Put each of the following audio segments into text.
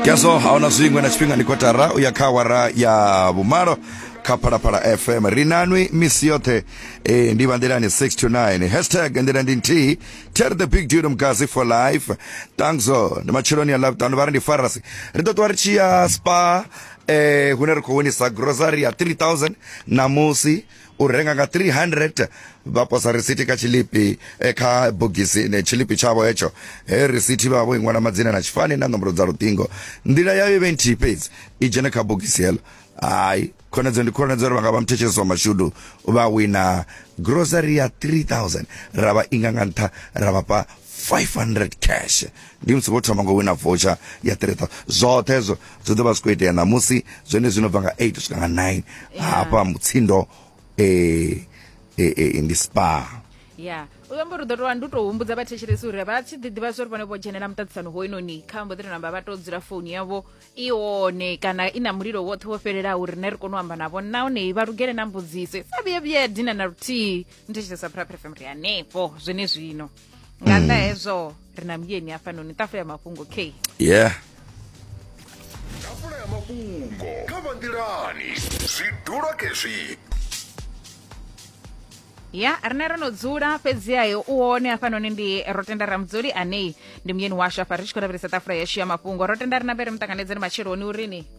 keso a huna zwiṅwe na tshifhinga ndi kotara u ya kha awara ya vhumalo kha phalaphala fm ri nanwi misi yoṱhe e, ndi vha nḓilani 6 to 9 hashtag nḓila ndi nthihi ter the big dude mkazi for life tangzo ndi matsheloni ya lavhutanu vha ri ndi farasi ri ḓo ṱuwa ri tshi ya spa eh hune ri khou winisa grocery ya 3000 namusi u renga nga 300 vha posa risithi kha tshilipi eh, kha bogisi ne tshilipi tshavho hetsho he risithi vha vho inwala madzina na tshifani na nomboro dza luṱingo nḓila yayo vhe nthihi fhedzi i dzhene kha bogisi heḽo hayi khonedzeo ndi khonedzeo uri vha nga vha muthetshesi wa mashudu vha wina grocery ya 3000 ra vha inga nga nṱha ra vha fha 500 cash ndi musi vho thoma ngo wina voucher ya 3000 zwoṱhe hezwo zwi ḓo vha zwi khou itea ṋamusi zwone zwino bva nga 8 swika nga 9 hafha mutsindo eh, eh, eh, ndi spa ya u amba uri u ḓo tovha ndi u tou humbudza vhathetshelesi uri vha tshi ḓiḓivha zwa uri vhone vho dzhenela muṱaṱisano hoinoni kha mbo ḓi tou namba vha tou dzula founu yavho i one kana i na mulilo woṱhe wo fhelelaho uri ne ri kone u amba navho nahone vha lugele na mbudziso i sa vhuye vhuye ya dina na luthihi ndi tshi sa phuraphura fm ri hanefho zwene zwino nga nnḓa hezwo ri na muyeni hafhanoni ṱafula ya mafhungo k yeah tafula ya mafhungo kha vha nḓilani zwidulo kezwi ya rine ro no dzula fhedziha yo u hone hafhanoni ndi ro tenda ramudzuli anei ndi muyeni washu afha ri tshi khou lavhelesa ṱafula yashu ya mafhungo ro tenda ri nambere muṱanganedzeni matsheloni urini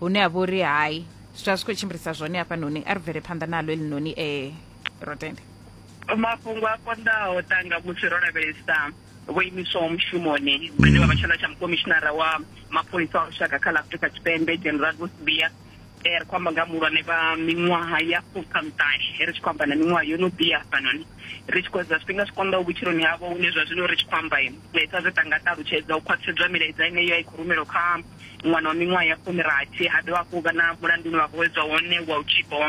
hune ha vha uri hai zwi vha zwi khou tshimbilisa zwone hafhanoni a ri bvele phanḓa nalo elinoni e eh, rotende mafhungo a konḓaho tanga musi ro lavhelesa vho imiswaho mushumoni vhane vha vha tshanḓa tsha mukomishinara wa mapholisa a lushaka kha ḽa afrika tshipembe general vosbia eh, ri khou amba nga muhulwane vha miṅwaha ya fukhamutani eh, ri tshi khou amba na miṅwaha yo no bia hafhanoni ri tshi khou edza zwifhinga zwi konḓaho vhutshiloni havho hune zwa zwino ri tshi khou amba sa zwe tanga ṱalutshedza u khwaṱhisedzwa milaedza ine yo a i khou rumelwa kha ṅwana wa miṅwaha ya fumirathi ha dovha hafhu vha na mulandu une vha khou vhedzwa wone wa u tshipa wa